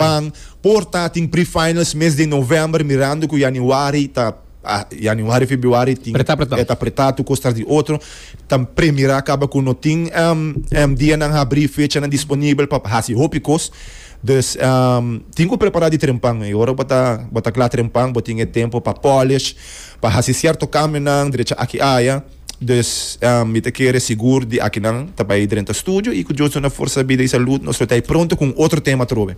Japan por ta tin pre-finals mes di november mirando cu januari ta januari februari tin e ta apretá tur cos tras di otro ta pre mirá caba cu no tin dianan habrí fechanan disponibel pa haci hopi cos dus tin cu prepará di trempan y ora bo ta bo ta cla trempan bo tin e tempo pa polish pa haci cierto cambionan derecha aki aya. Dus, mi ta kere sigur di akinan ta bai drenta studio i ku Dios duna forsa, bida i salud, nos lo ta hei pronto ku un otro tema atrobe.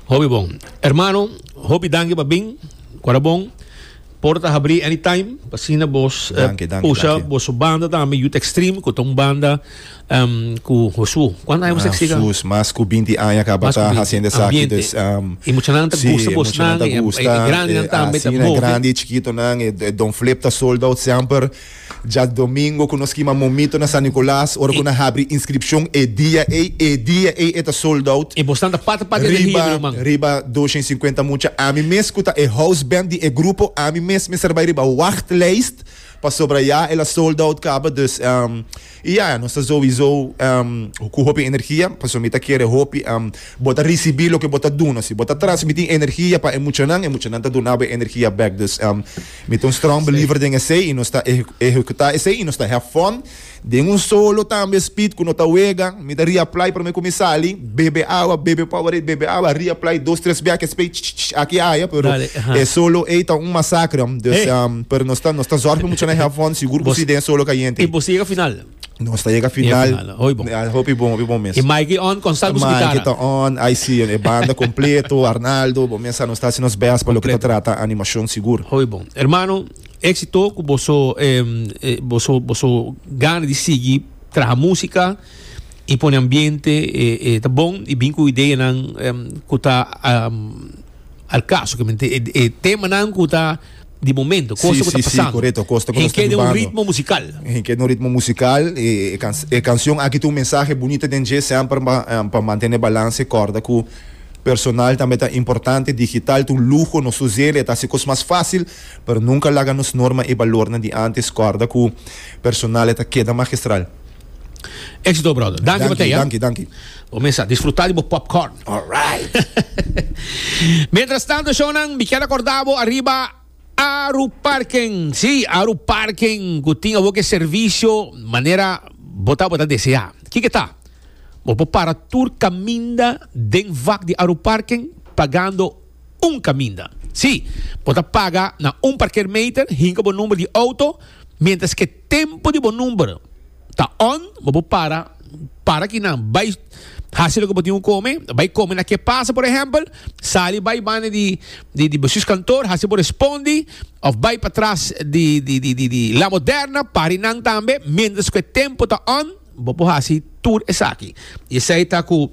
Hopi bon hermano, hopi danki pa bin, ku a ta bon. Porta ta habrí anytime, pa asina bos pusha boso banda tambe Youth Extreme, ku ta un banda. um, ku Josu. Kuantu aña boso siga? Sus, mas ku binti aña ka bata haciendo esaki. Dus, um, e muchanan ta gusta bos nan, ta gusta, e, e grandi nan tambe ta bobi. grandi e chikito nan, e, e Don Flip ta sold out semper. Ja domingo ku nos kima momito na San Nicolas, ora ku na habri inscripcion e dia ei, e dia ei e ta sold out. E bos nan ta pata pata e riba, man. Riba 250 mucha. Ami mes ku ta e house band di e grupo, ami mes mi ser bai riba wachtlijst pa sobraya el a sold out kaba. Dus, um, I ya, nos ta souizo ku hopi energia, pasobra mi ta kere hopi bo ta risibí loke bo ta duna. Si bo ta transmití energia pa e muchanan, e muchanan ta duna bo e energia bèk. Dus, mi ta un strong believer den esei i nos ta ehekutá esei i nos ta have fun. Den un solo tambe, Speed, ku no ta wega, mi ta reapply promé ku mi sali. Bebe awa, bebe Powerade, bebe awa, reapply dos tres bea ke spray, ch-ch-ch, aki haya, pero Dale, aha. e solo ey ta un masacre, um, dus, Hey. um, pero nos ta, nos ta zorg pa mucha na have fun, sigur ku Bos- si den solo kayente. Y vos llega final. Nos ta yega final, final, hoy bon. Ah, hopi bon, hopi bon mes. Y Mikey on con salvo su Mike guitarra. ta on, ay si, e banda completo, Arnaldo, bo mesa nos ta haci nos best pa lo que ta Completo. trata animacion sigur. Hoy bon. Hermano, éxito ku boso em, eh, boso boso gana di sigui traha música. y pone ambiente e ta bon y bin cu ideanan cu ta al caso que mente e temanan cu ta di momento, Sí, cosa cu ta sí, sí, pasando. correcto, cosa cu ta Hen quiere un tumbando. ritmo musical. Hen quiere un ritmo musical. E, e, can- e canción aquí tiene un mensaje bonito den dje, semper pa, eh, pa mantener balance. Corda cu personal tambe ta importante, digital ta un lujo, nos us'el, e ta haci cos mas fácil, pero nunca laga nos norma y balornan di antes. Corda cu personal e ta keda magistral. Éxito, brother. Danki, Danki, Mateo. danki, danki. Bo mesa, disfruta di bo popcorn. All right. Mientras tanto, shownan, mi quiero acordabo arriba Aru Parking. Sí, Aru Parking, que tiene bo que servicio manera bota bota desea. ¿Qué que está? Bo po para tour caminda den vak di Aru Parking pagando un caminda. Sí, bota paga na un parkeermeter hinka bo number di auto mientras que Tempu di bo number ta on, bo bo para, para ki nan bai hasi loke bo tin ku kome, bai kome na ke pasa por ehempel, sali bai banda di di besus kantor hasi bo respondi of bai patras di di di di di La Moderna, pari nan tambe mientras ku e tempu ta on. Bo por hasi tur esaki. I esei ta ku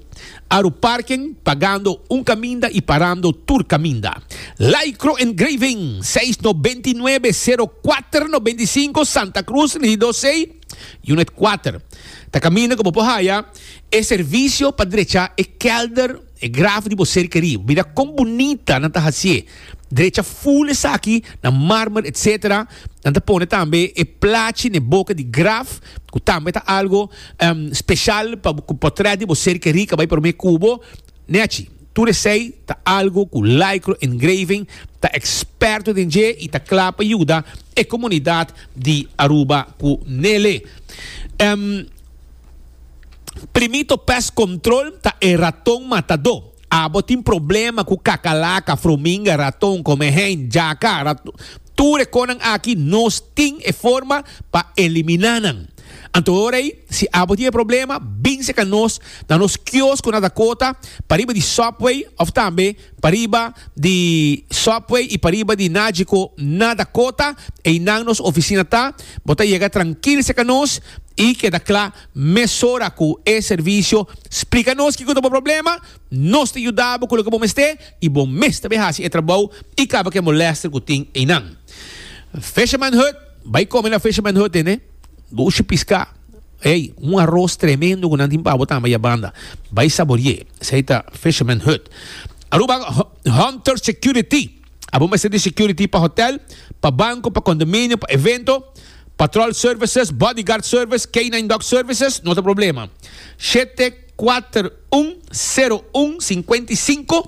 aru parken, pagando un kaminda i parando tur kaminda. Lycro Engraving, seis no benti nuebe, sero kuater no benti sinku, Santa Cruz, Regidó Sei, Unit kuater. Ta kaminda ku bo por haya e servisio pa drecha e kelder. E graf di bo serka riba. Mira kon bunita nan ta hasié. Drecha ful esaki na marmer etc. Nan ta pone tambe e plachi n'e boka di graf ku tambe ta algo special pa ku potret di bo serka rica bai prome kubo. Nechi, tur esei ta algo ku Lycro Engraving ta experto den dje i ta kla pa yuda e komunidat di Aruba ku Nele. Primito pest control ta e raton matadó. Abo tin problema cu cacalaca, frominga, raton, come hen, jaca, raton. Tur e conan aki nos tin e forma pa elimina nan. Anto ora ei, si abo tin e problema, binse ca nos na nos kiosk cu na Dakota, pariba di Subway of tambe pariba di Subway y pariba di Nagico na Dakota, einan nos oficina ta. Bo ta yega trankil seca nos y keda cla. Mesora cu e servicio splica nos kico ta bo problema, nos ta yuda bo cu loke bo mester y bo mes ta bay haci e trabou y caba cu e molester cu tin eynan. Fisherman Hut, Bay come na Fisherman Hut ene, gushi pisca, ey, un aros tremendo cu nan tin pa bo tambe ay a banda. Bay saborie, esey ta Fisherman Hut. Aruba Hunter Security. Abo mester di security pa hotel, pa banco, pa condominio, pa evento, patrol services, bodyguard service, canine dog services, no ta problema. Shete, kuater, un, seru, un, sinkuenta i sinku.